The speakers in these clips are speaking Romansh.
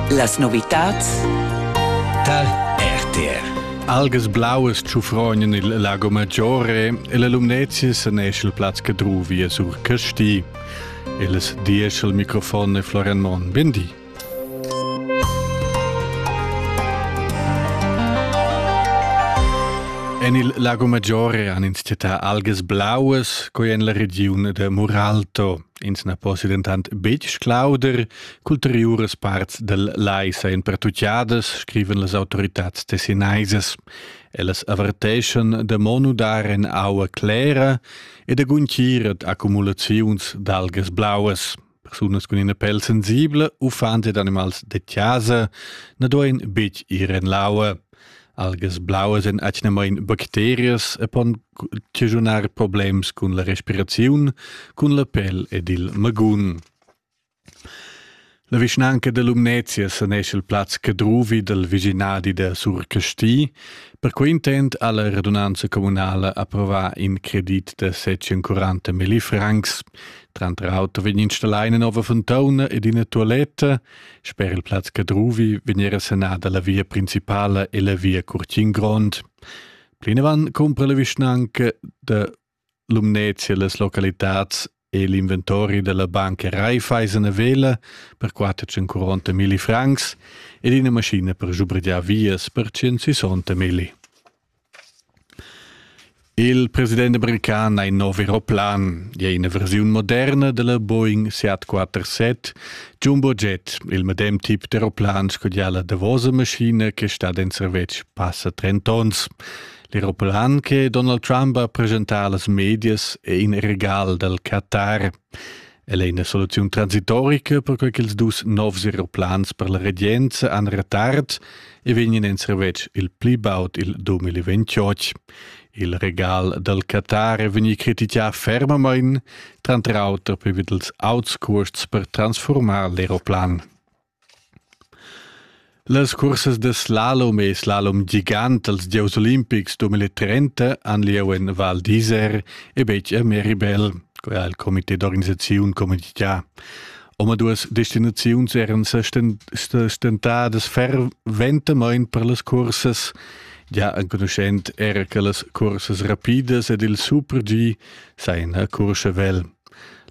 Las novitads tar RTR. Algas blauas tschufrognan il Lago Maggiore e la Lumnezia sanesce il plaz che druvia sur Casti. Il diesch al microfon è Florian Mon. Bindi. En il Lago Maggiore han ins città algas blauas, coi en la regiun de Muralto. Ins na possia dentant betg sclauder ch'ulteriuras parts dal lai sajan pertutgadas, scrivan las autoritads tessinaisas. Ellas averteschan da mo nudar en aua clera e da guntgir ad accumulaziuns d'algas blauas. Persunas cun ina pel sensibla u fans ed animals da chasa na duain betg ir en l'aua. algas blauas en atgnamain bacterias e pon chigiunar problems cun la respiraziun, cun la pel ed il magun. La vischnanca da Lumnezia sanesce il plaz Cadruvi dal vicinadi da Sur Casti. Perquei intent ha la radunanza communala approvar in credit da 740 milli francs. Tranter auto vegn installà ina nova fontauna ed ina tualetta Sper il plaz Cadruvi vegnera sanada la via principala e la via Curtin Grond. Plinavant cumpra la vischnanca da Lumnezia las localitads e l'inventori della banca Raiffeisen a Vela per 440 milli francs ed ina maschina per schubrgiar vias per 160 milli. Il president american ha in nov aeroplan e ina versiun moderna dalla Boeing 747 Jumbo Jet. Il medem tip d'aeroplan sco la davosa maschina che stat en servetsch passa 30 onns. L'aeroplan che Donald Trump ha presentà las medias è in regal dal Qatar. Ella è ina soluziun transitorica, perquai ch'ils dus novs aeroplans per la regenza han retard e vegnan en servetsch il pli baud il 2028. Il regal dal Qatar è vegnì critichà fermamain, tranter auter per ils auts cuosts per transformar l'aeroplan. Las cursas da slalom e slalom gigant dals gieus olimpics 2030 han lieu en Val d'Isère e betg a Meribel. Quai ha il comité d'organisaziun communitgà. Omaduas destinaziuns eran sa stentadas ferventamain per las cursas, gia enconuschend era che las cursas rapidas ed il super-G sajan a Courchevel.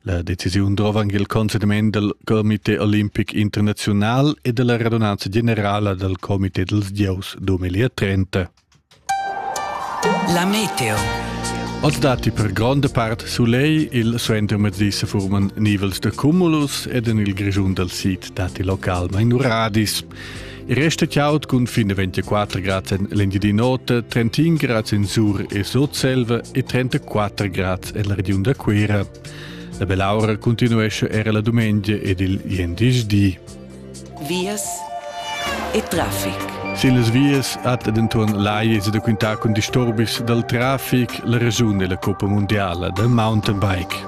La decisiun drova anc il conseniment dal Comité olimpic internaziunal e dalla radunanza generala dal Comité dals gieus 2030. La meteo. Oz datti per gronda part soleil, il suenter mezdi se forman nivels da cumulus ed en il Grischun dal sid datti localmain uradis. Resta chiaut cun fin 24 grad en l'Engiadin'Ota, 31 grad en Sur e Sotselva e 34 grad en la regiun da Cuira. La bell'aura continuesce era la domenica ed il jendischdi. Vias e traffic. Sillas vias hat denton laies da quintar cun disturbis dal traffic la regiun della Coppa Mondiala da mountainbike.